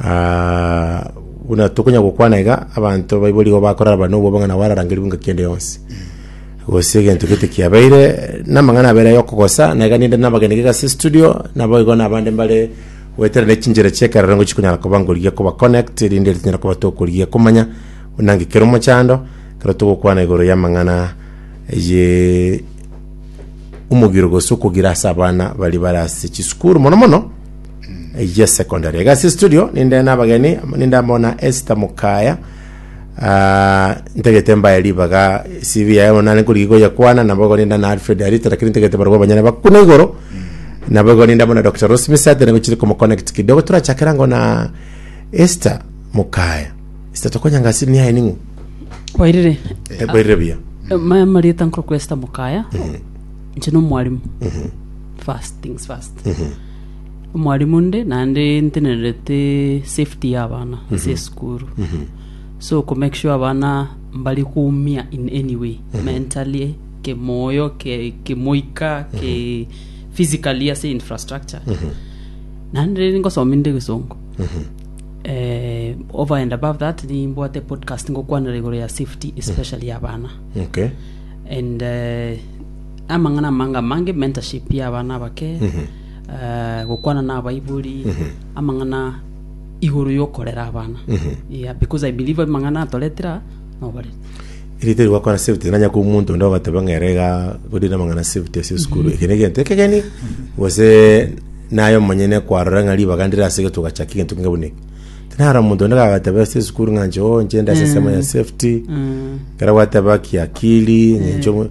Ah, buna tokonya gokwana iga, abanto baibo rigo bakoraraba na obwabang'ana bwararangerigwe engaki ende yonsi. Gose egento gete kiabeire namang'ana abere ya okogosa, na iga ninde nabagenige iga ase studio, nabo igo nabande mbare goetera ne chinchera chi'ekerero ngochi konyara koba nkorigia koba connect, rinde ritunyare koba tokorigia komanya buna nki kere omochando, ekero togokwana igoro y'amang'ana ye omogiro gose okogira ase abana bari bare ase chisukuru mono mono. Eyio secondary. Egasi studio ninde nabageni ninde amo na Esther Mukaya. Ah, ntegete mbaye ribaga CV yaye bono nare nkorigia goyekwana nabo igo ninde na Alfred Arita lakini ntegete barabwo abanyene bakuna igoro. Nabo igo ninde amo na Dr. Rose Misate nigo chiri komo connect kidogo turachakera ango na Esther Mukaya. Esther tokonyanga asini yaye ning'u. kwairire Eberire buya. maya marieta nkorokwa esita mukaya nche nomwarimu first things first Omwalimu nde naende ntenerete safety ya abana ase esukuru so ko make sure abana mbari koumia in any way mentally kemoyo ke- kemoika ke physically ase infrastructure naende riri ngosomia inde egesongo eh, over and above that nimbwate podcast ngokwanera igoro ya safety especially ya abana okay and eh, Amang'ana amange amange, mentorship y'abana abake, eh, gokwana n'abaibori, amang'ana igoro y'okorera abana. Yeah, because I believe amang'ana atoretera nobarete. Erite rigwakora safety nanya kwa omonto onde ogateba ng'a ere iga gori namang'ana safety ase esukuru eke na egento ekegeni gose naye omonyene kwarora ng'a ribaga ndire ase egetugo gachaka egento kenge buna eke tinaro omonto onde gagateba ase esukuru ng'a inche oo inche nde ase ensemo ya safety ekero gwateba kiakiri ng'a inche omo-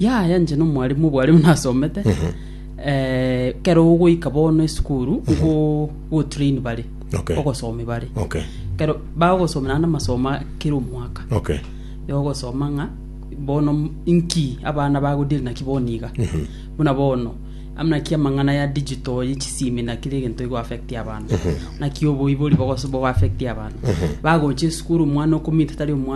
Yaya inche nomwalimu obware buna asomete eh, kero ogoika bono esukuru ogo- ogotrain bare Okay. ogosomi bare Okay. kero bagosomera n'amasomo a kera omwaka Okay. yogosoma ng'a bono m- inki abana bagodiri naki bono iga buna bono amuna ki amang'ana ya digital ya chisimi na kire egento igo affect abana naki oboibori bogoso bogo affect abana bagocha esukuru omwana okomita tari omwana